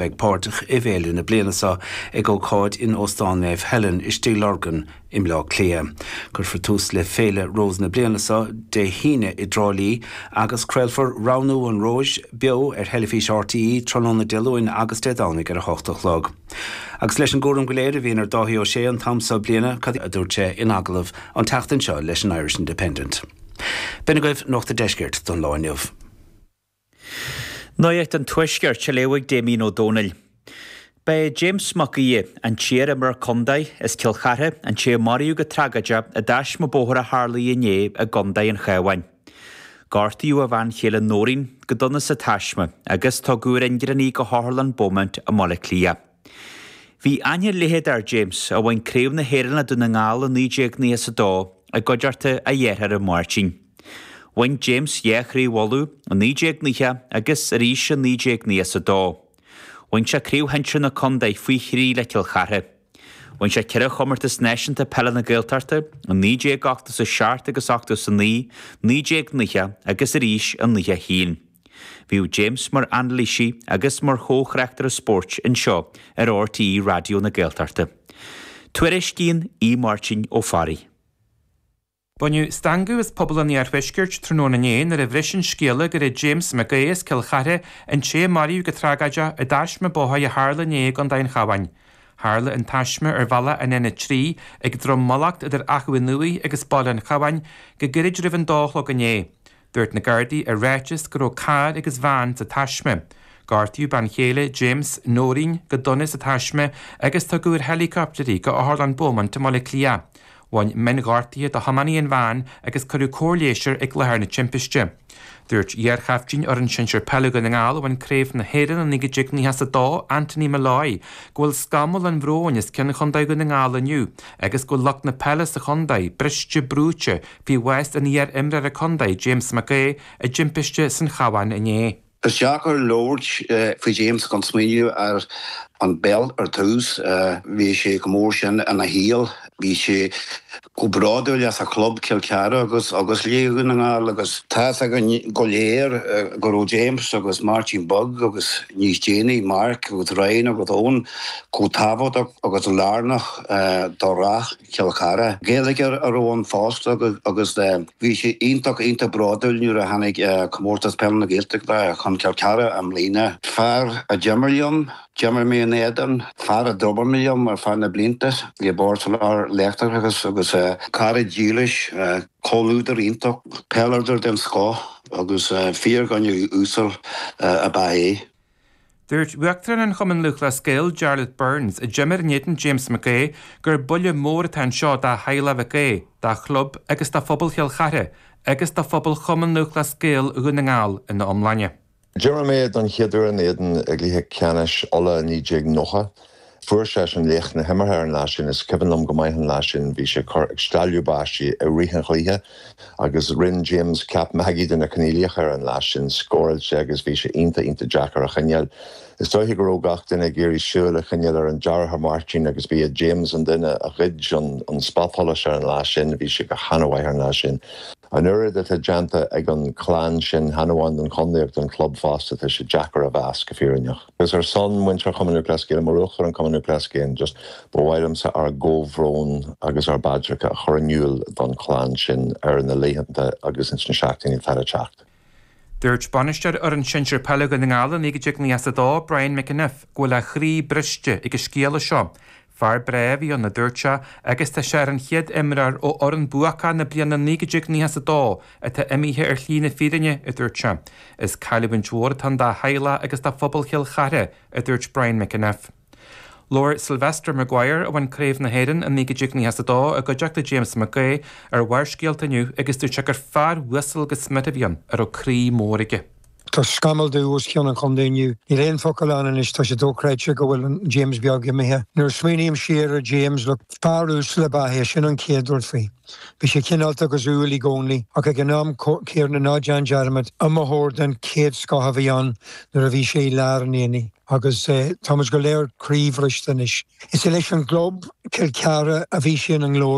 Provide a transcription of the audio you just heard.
bheidh páirteach i bhféile na bliana seo ag ócáid in Óstán Naomh Helen i Stigh Lorgan i mBleá Cliath. Cuirfear tús le Féile Rós na bliana seo Dé hAoine i dTrá Lí agus craolfar Roghnú an Róis beo ar theilifís RTÉ tráthnóna Dé Luain agus Dé Domhnaigh ar 8 a chlog. Agus leis an gcúram go léir a bhíonn ar Dáithí Ó Sé an t-am seo bliana, cad a dúirt sé in agallamh an tseachtain seo leis an Irish Independent? B'in agaibh Nuacht an Deiscirt don lá inniu. Nuacht an Tuaiscirt, á léamh ag Damien Ó Dónaill. Ba é James Mac Aoidh, an t-iar-imreoir contae as Cill Chartha, an té a maraíodh go tragóideach i dtaisme bóthair a tharlaigh inné i gContae an Chabháin. Gortaíodh a bhean chéile Nóirín go dona sa taisme agus tugadh ar ingearán í go hOtharlann Beaumont i mBaile Átha Cliath. Bhí aithne leitheadach ar James, a bhain Craobh na hÉireann le Dún na nGall i 1992, i gcuideachta a dhearthára Máirtín. Bhain James dhá Chraobh Uladh, i 1990 agus arís i 1992. Bhain sé Craobh Shinsir na Contae faoi thrí le Cill Chartha. Bhain sé ceithre chomórtas náisiúnta peile na Gaeltachta, i 1987 agus 89, 1990 agus arís i 91. Bhíodh James mar anailísí agus mar chomhthráchtaire spóirt anseo ar RTÉ Raidió na Gaeltachta. Tuairiscíonn Aodh Máirtín Ó Fearraigh. Baineadh stangadh as pobal an iarthuaiscirt tráthnóna inné nuair a bhris an scéala gurbh é James Mac Aodha as Cill Chartha, an té a maraíodh go tragóideach i dtaisme bóthair a tharla inné i gcontae an Chabháin. Tharla an taisme ar bhealach an N3 ag Drom Mallacht idir Achadh an Iúir agus Baile an Chabháin go gairid roimh an dó a chlog inné. Dúirt na Gardaí i ráiteas go raibh carr agus veain sa taisme. Gortaíodh bean chéile James, Noreen, go dona sa taisme agus tugadh ar helicopter í go Otharlann Beaumont i mBaile Átha Cliath. Bhain mionghortuithe do thiománaí an veain agus cuireadh cóir leighis air ag láthair na timpiste. Dúirt iar-chaiftín fhoireann sinsir peile Dhún na nGall a bhain Craobh na hÉireann i 1992, Anthony Molloy, go bhfuil scamall an bhróin os cionn Chontae Dhún na nGall inniu agus go bhfuil lucht na peile sa chontae briste brúite faoi bhás an iar-imreora contae James Mac Aodha i dtimpiste san Chabhán inné. Is deacair labhairt faoi James gan smaoineamh ar an bpeil ar dtús. Bhí sé chomh mór sin ina shaol. Bhí sé chomh bródúil as a chlub Cill Chartha agus le Dún na nGall agus tá's againn go léir go raibh James agus Máirtín Beag agus níos déanaí Mark agus Ryan agus Eoin chomh tábhachtach agus lárnach do rath Chill Chartha. Gaeilgeoir a raibh ann fosta agus bhí sé iontach, iontach bródúil nuair a tháinig Comórtas Peile na Gaeltachta chun Cill Chartha i mbliana. Fear a d'imir liom, d'imir mé in éadan, fear a d'obair mé liom ar feadh na blianta i mBord Soláthair Leictreachais agus cara dílis, comhluadar iontach, peileadóir den scoth agus fíordhuine uasal ab ea é. Dúirt Uachtarán an Chumainn Lúthchleas Gael, Jarlath Burns, a d'imir in éadan James McHugh, gur buille mór atá anseo do theaghlach Mhic Aoidh, dá chlub agus do phobal Chill Chartha agus do phobal Chumann Lúthchleas Gael Dhún na nGall ina iomláine. D'imir mé don chéad uair ina éadan i gcluiche ceannais Uladh i 1990. Fuair seisean laoch na himeartha ar an lá sin. Is cuimhin liom go maith an lá sin. Bhí sé ag cur ag stealladh báistí i rith an chluiche agus rinn James ceap magaidh de na coinníollacha ar an lá sin. Scórail sé agus bhí sé iontach, iontach deacair a choinneáil. Is dóiche go raibh gach duine ag iarraidh súil a choinneáil ar an deartháir Máirtín agus ba é James an duine a ghoid an spotsholas ar an lá sin. Bhí sé go hana-mhaith ar an lá sin. An oiread atá déanta ag an chlann sin, chan amháin don chondae ach don chlub fosta, tá sé deacair a mheas, go fírinneach. Agus ar son muintir Chumann Lúthchleas Gael, mar Uachtarán an Chumainn Lúthchleas Gael just, ba mhaith liomsa ár gcomhbhrón agus ár bpaidreacha a chur in iúl don chlann sin ar na laethanta agus ins na seachtainí atá le teacht. Dúirt bainisteoir fhoireann sinsir peile Dhún na nGall i 1992, Brian McEniff, go bhfuil a chroí briste ag an scéala seo Fear breá a bhí ann a dúirt sé agus tá sé ar an chéad imreoir ó fhoireann bhuacach na bliana 1992 atá imithe ar shlí na fírinne, a dúirt sé. Is cailliúint mhór atá ann dá theaghlach agus do phobal Chill Chartha, a dúirt Brian McEniff. Labhair Sylvester Maguire, a bhain Craobh na hÉireann i 1992 i gcuideachta James McHugh, ar Bharrscéalta inniu agus dúirt sé gur fear uasal gan smid a bhí ann a raibh croí mór aige. Tá scamall dubh os cionn an chondae inniu. Níl aon focal ann anois, tá sé dóchreidte go bhfuil James Beag imithe. Nuair a smaoiním siar ar James, look, fear uasal ab ea é, sin an chéad rud faoi. Bhí sé cineálta agus umhal i gcónaí, ach ag an am céanna ná déan dearmad, iomaitheoir den chéad scoth a bhí ann nuair a bhí sé i lár an aonaigh. Agus táimid go léir croíbhriste anois. Is leis an gclub, Cill Chartha, a bhí sé ina ghlóir.